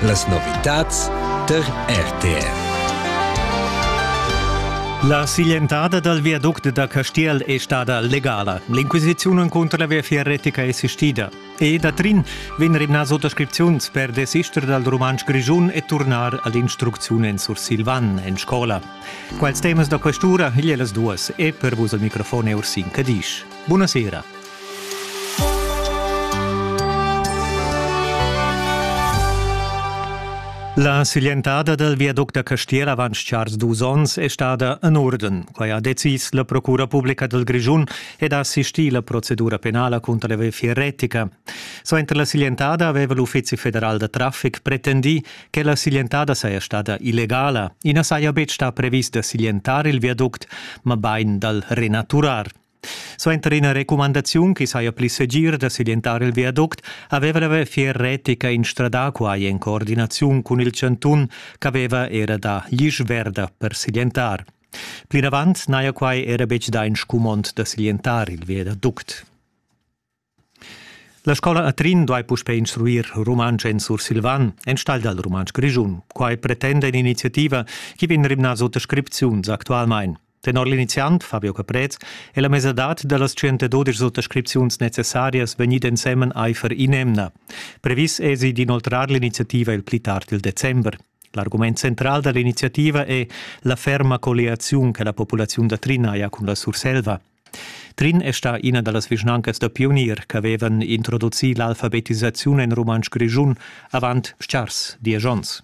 Las novitads tar RTR. La siglientada dal viaduct da Castiel è stada legala. L'inquisiziun encunter la viafier retica è assistida. E da Trin vegn rimnà suttascripziuns per desister dal rumantsch grischun e turnar all'instrucziun en sursilvan en scola. Quals temas da questura igl las duas e per vus al microfon è Ursin Cadisch. Buonasera. La siglientada dal viaduct da Castera avant chars dus onns è stada en urden. Quai ha decis la Procura publica dal Grischun ed ha assistì la procedura penala cunter la VFI Retica. Suenter la siglientada aveva l'Uffizi federal da traffic pretendì che la siglientada saja stada illegala. I na saja betg stà previs da siglientar il viaduct, mabain dal renaturar. Suenter ina recumandaziun che saja pli segir da siglientar il viaduct aveva la Viafier retica instradà quai en coordinaziun cun il chantun ch'aveva era da l'isch verda per siglientar. Plinavant n'haja quai era betg dà in scumond da siglientar il viaduct. La scola a Trin duai puspè instruir rumantsch en sursilvan, enstagl dal rumantsch grischun. Quai pretenda in'iniziativa che vegn rimnas oters scripziuns actualmain. Tenor l'iniziant Fabio Caprez è la mesadad da las 112 suttascripziuns necessarias vegnida ensemen aifer in'emna. Previs èsi d'inoltrar l'iniziativa il pli tard il december. L'argument central da l'iniziativa è la ferma colliaziun che la populaziun da Trina ha cun la Surselva. Trin è stà ina da las vischnancas da pionier ch'avevan introducì l'alfabetisaziun en rumantsch grischun avant stgars diesch onns.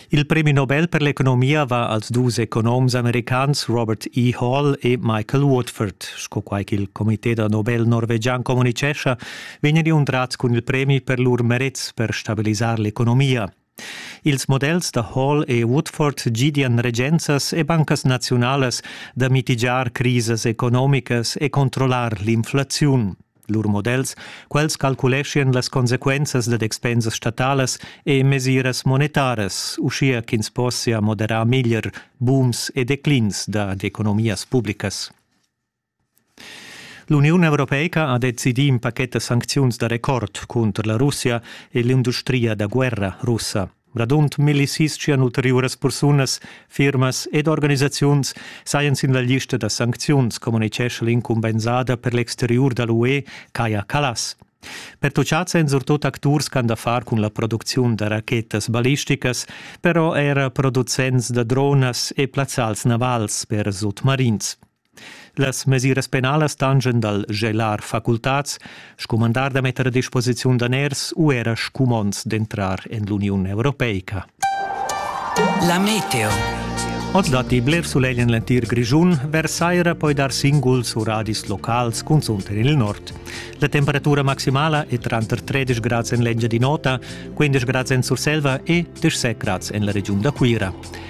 Il premi Nobel per l'economia va als dus economs americans Robert E. Hall e Michael Woodford. Sco quai ch'il comité da Nobel norvegian communitgescha, vegnan inuntrads cun il premi per lur merets per stabilisar l'economia. Ils models da Hall e Woodford gidian regenzas e bancas naziunalas da mitigiar crisas economicas e controllar l'inflaziun. Lur models, quels calculeschian las consequenzas dad expensas statalas e mesiras monetaras, uschia ch'ins possia moderar meglier booms e declins dad economias publicas. L'Uniun europeica ha decidì in pachet da sancziuns da record cunter la Russia e l'industria da guerra russa. Radund millisistian ulteriuras persunas, firmas ed organisaziuns sajan sin la lista da sancziuns, communitgescha l'incumbensada per l'exteriur da l'UE, Kaja Kallas. Pertuchads èn surtut acturs ch'han da far cun la producziun da rachetas ballisticas, però era producents da dronas e plazzals navals per sutmarins. Las mesiras penalas tangen dal gelar facultats, scumandar da metter a disposiziun daners u era scumonds d'entrar en l'Uniun europeica. La meteo. Oz datti bler sulegl en l'entir Grischun, Versaira poi dar singuls u radis locals, cunzunt en il nord. La temperatura maximala è tranter 13 grads en l'Engiadin'Ota, 15 grads en Surselva e 17 grads en la regiun da Cuira.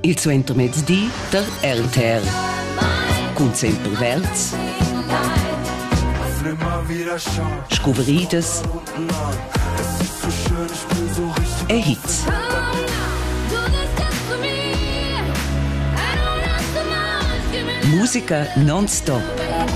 Il suentermezdi da RTR. Cun sempre verds. Scuvridas. E hits. Musica non-stop.